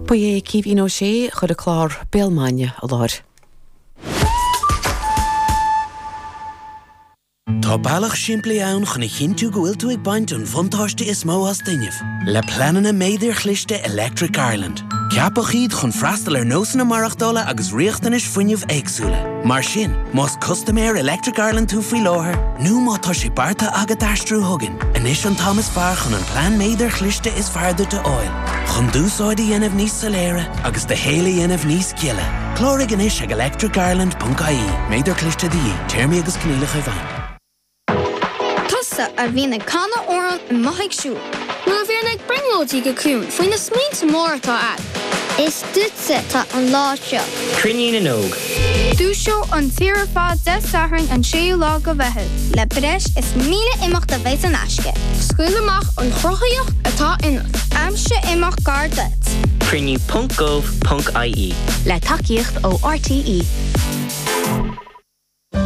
Ba é Caoimhín Ó Sé a chuir an clár Béal Maidine i láthair. Tá bealach simplí ann chun a chinntiú go bhfuil tú ag baint an bhuntáiste is mó as d'fhuinneamh. Le pleananna méadair chliste Electric Ireland, ceapadh iad chun freastal ar nósanna maireachtála agus riachtanais fuinnimh éagsúla. Mar sin, más custaiméir Electric Ireland tú faoi láthair, nó má tá sé beartaithe agat aistriú chugainn, anois an t-am is fearr chun an plean méadair chliste is fearr duit a fháil. Chun d'úsáid a dhéanamh níos soiléire agus do shaol a dhéanamh níos gile, cláraigh anois ag electricireland.ie, méadar cliste de dhíth, téarmaí agus coinníollacha i bhfeidhm. Tusa a bhíonn ag canadh amhrán i mbóithre siúil. Nó a bhíonn ag brionglóidí go ciúin faoi na smaointe móra atá agat. Is duitse atá an lá seo. Cruinniú na nÓg. Dúiseoidh an tír ar fad Dé Sathairn an 6ú lá de Mheitheamh. Le breis is 1,000 imeacht a bheidh in aisce. Scaoil amach an chruthaíocht atá ionat. Aimsigh imeacht gar duit. Cruinniú ponc gov ponc ie. Le tacaíocht ó RTÉ.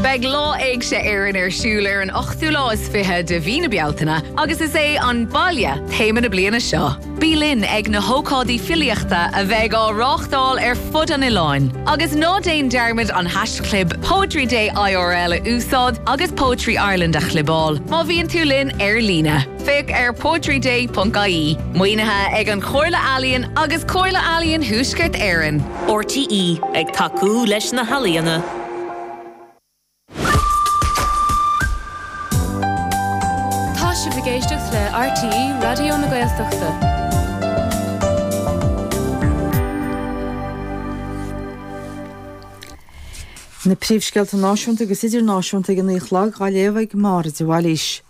Beidh Lá Éigse Éireann ar siúl ar an ochtú lá is fiche de mhí na Bealtaine agus is é 'An Baile' téama na bliana seo. Bí linn ag na hócáidí filíochta a bheidh á reáchtáil ar fud an oileáin agus ná déan dearmad an haischlib Poetry Day IRL a úsáid agus Poetry Ireland a chlibeáil má bhíonn tú linn ar líne. Féach ar poetryday.ie. Maoinithe ag An Chomhairle Ealaíon agus Comhairle Ealaíon Thuaisceart Éireann. RTÉ ag tacú leis na healaíona. Tá sibh ag éisteacht le RTÉ Raidió na Gaeltachta. Na príomhscéalta náisiúnta agus idirnáisiúnta ag a naoi a chlog á léamh ag Máire de Bhailís.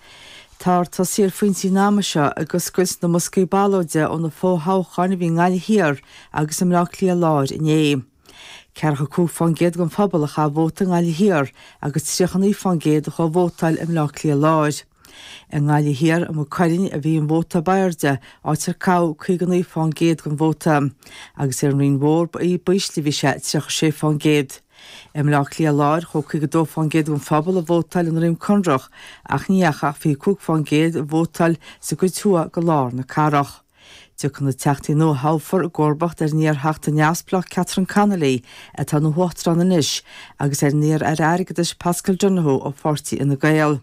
Táthar ag tosaí ar an bpointe an ama seo ag oscailt na mboscaí ballóide ó na fo-thoghcháin a bhí i nGaillimh Thiar agus i mBleá Cliath Láir inné. 45% den phobal a chaith vóta i nGaillimh Thiar agus 39% a chuaigh vótáil i mBleá Cliath Láir. I nGaillimh Thiar, i Maigh Cuilinn, a bhí an vóta ab airde, áit ar caitheadh 59% den vóta, agus ar an Rinn Mhór ab ísle a bhí sé, 36%. I mBleá Cliath Láir, chuaigh 52% den phobal a vótáil i nDroim Conrach, ach ní dheachaidh ach 25% a vótáil sa gcuid thuaidh de lár na cathrach. Tiocfaidh na Teachtaí nua a thoghfar i gcomharbacht ar an iar-Theachta neamhspleách Catherine Connolly, atá ina huachtarán anois, agus ar an iar-aire airgeadais Paschal Donohoe ó pháirtí Fhine Gael.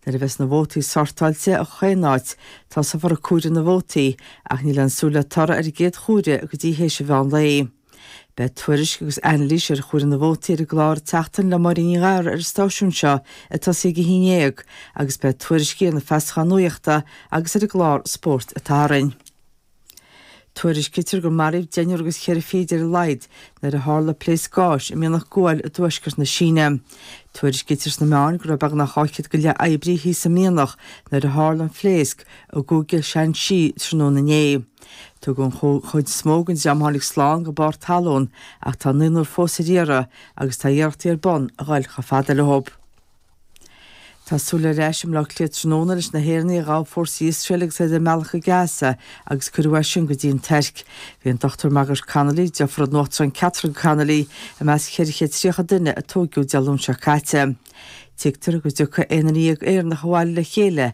Nuair a bheas na vótaí sórtáilte i chaon áit, tosófar ag comhaireamh na vótaí, ach níl aon súil le toradh ar an gcéad chomhaireamh go dtí théis an mheán lae. Beidh tuairisc agus anailís ar chomhaireamh na vótaí ar an gclár An tSeachtain le Máirín Ní Ghadhra ar an stáisiún seo ag tosaí ag a haon déag agus beidh tuairiscí ar na feasacháin nuachta agus ar an gclár Spórt an tSathairn. Tuairiscitear gur maraíodh deichniúr agus cheithre fichid ar a laghad nuair a tharla pléasc gáis i mianach guail i dtuaisceart na Síne. Tuairiscitear sna meáin go raibh beagnach dhá chéad go leith oibrí thíos sa mhianach nuair a tharla an phléasc i gCúige Shanxi tráthnóna inné. Tugadh an chuid is mó den dream a tháinig slán go barr talún ach tá naonúr fós ar iarraidh agus tá iarrachtaí ar bun a ghoil chomh fada leo. Tá súil ar ais i mBleá Cliath tráthnóna leis na hÉireannaigh a ghabh fórsaí Iosrael agus iad ar a mbealach go Gaza agus cuireadh as sin go dtí an Tuirc. Bhí an Dr Margaret Connolly, deirfiúr an Uachtaráin Catherine Connolly, i measc 430 duine a tóigeadh Dé Luain seo caite. Tuigtear go dtiocfaidh aon duine dhéag Éireannach abhaile le chéile